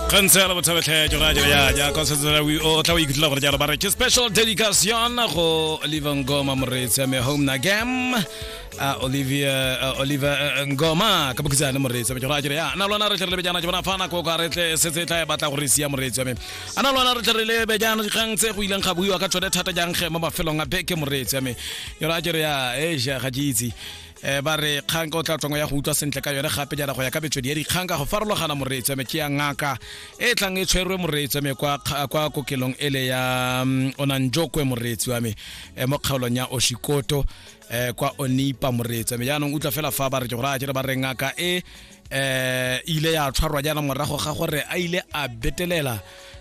kgantse ya labotlhabetlhejo ra jela ya jaaka o setsela o tla o ikutlwela gore jalo ba re ke special dedication go oliver ngoma moreetsi ya me home na game a olivia uh, oliver uh, ngoma ka bokhitsane moreetsi ya me jora jere ya na lona re tle re lebe jana ke bona fa nako ka re tle setse e tla e batla gore sia moreetsi ya me a na lona re tle re lebe jana dikgang tse go ileng ga buiwa ka tsone thata jang ge mo mafelong a beke moreetsi ya me jora jere ya e ja ga ke itse um ba re kgang ka o tla tswang ya go utlwa sentle ka yone gape jana go ya ka metswedi ya dikgang ka go farologana moreetseme ke ya ngaka e tlang e tshwerwe moreetseme kwa kwa kokelong ele ya um, onanjokwe moreetsi wa me um mo kgaolong ya oshikoto um kwa onipa moreetseme jaanong utlwa fela fa ba re ke gore a ke re ba re ngaka e eh ile ya tshwarwa jaana morago ga gore a ile a betelela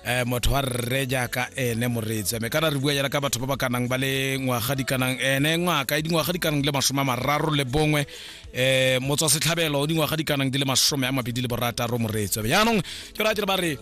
eh motho wa rre jaaka ene moreetsi mme kana re bua jaana ka batho ba ba kanang ba le ngwaga di kanang ene ngwaka e dingwaga di kanang le masome a mararo le bongwe eh motswa setlhabelo o dingwaga di kanang di le masome a mabedi le borataro moreetsi jaanong ke ra tse ba re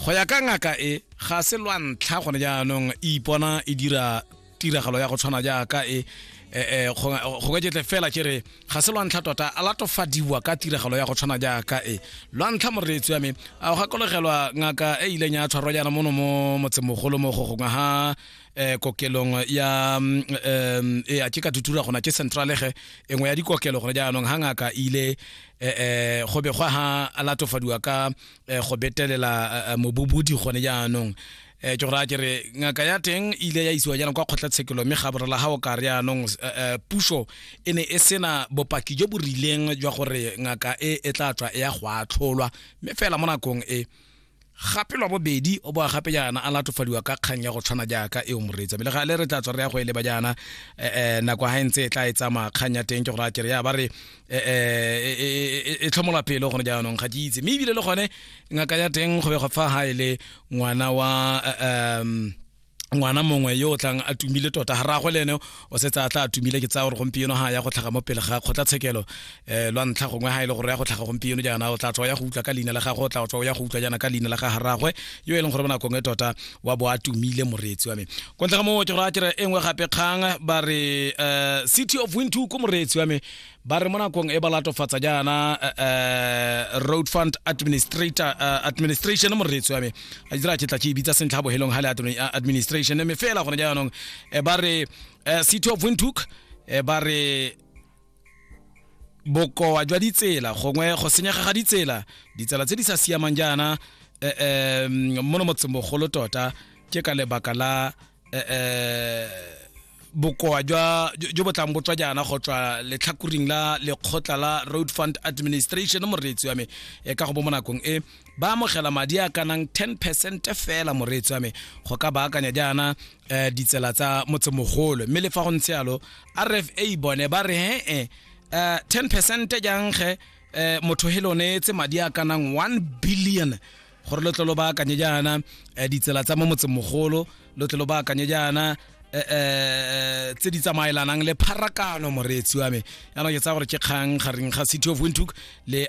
go ya ka ngaka e ga se lwa ntlha gone jaanong e ipona e dira tiragalo ya go tshwana jaaka e eh, eh, go go ka jetle fela ke re ga se lwantlha tota a latofadiwa ka tiragalo ya go tshwana jaaka e lwantlha moreetsi wa me a o gakologelwa ngaka e ileng ya tshwarwa jaana mono mo motsemogolo mo go gongwe ha eh, kokelong ya mm, em, e a ke ka tutura gona ke centralege e nngwe ya dikokelo gone jaanong ga ngaka e ile eh, eh, go begwa ha a latofadiwa ka eh, go betelela eh, eh, mobobodi gone jaanong eh ke go raya ke re ngaka ya teng e ile ya isiwa jaanong kwa kgotlatshekelo mme ga borela ga o ka re yaanong eh, eh, puso e ne e sena bopaki jo bo rileng jwa gore ngaka e e tla tswa e ya go atlholwa mme fela mo nakong e gape lwa bobedi o boa gape jaana a latofadiwa ka kgang ya go tshwana jaaka e o moreetsa mme le ga le re tla tswa re ya go e leba jaana um nako ga e ntse e tla e tsamaya kgang ya teng ke go raya kere ya ba re e, e, e, e tlhomola pelo gone jaanong ga ke itse mme ebile le gone ngaka ya teng go bega fa ga e le ngwana wa um ngwana mongwe yo o tlang a tumile tota ga ragwe le ene o setse a tla a tumile ke tsaya gore gompieno ga ya go tlhaga mo pele ga kgotlatshekelo um lwa ntlha gongwe ga e le gore ya go tlhaga gompieno jaana o tla tswa ya go utlwa ka leina la gagwe o tla tswa ya go utlwa jaana ka leina la ga ragwe yo e leng gore mo nakong e tota wa bo a tumile moreetsi wa me kwa ntle ga moo ke go raya kere e nngwe gape kgang ba re um city of wintu ko moreetsi wa me ba re mo nakong e ba latofatsa jaana um road fund administrator uh, administration moreetsi wa me a dira ke tla ke e bitsa sentlha a bohelong ga le administration mme fela gone jaanong um ba re um city of wintuk um ba re bokoa jwa ditsela gongwe go senyega ga ditsela ditsela tse di sa siamang jaana um mo no motsemogolo tota ke ka lebaka la um bokoa jwa jo bo tlang botswa jaana go tswa letlhakoring la lekgotla la road fund administration moreetsi wa me e ka go bo mo nakong e ba amogela madi a kanang 10 percent fela moreetsi wa me go ka baakanya jaana eh ditsela tsa motsemogolo mme le fa go ntse yalo rfa bone ba re he eh, eh 10 percent jang ge eh, motho he lo neetse madi a kanang 1 billion gore lo tle lo baakanye jaana eh, ditsela tsa mo motsemogolo lo tle lo baakanye jaana eh, eh, tse di tsamaelanang le pharakano moreetsi wa me yaanong ke tsaya gore ke kgang gareng ga city of windhoek le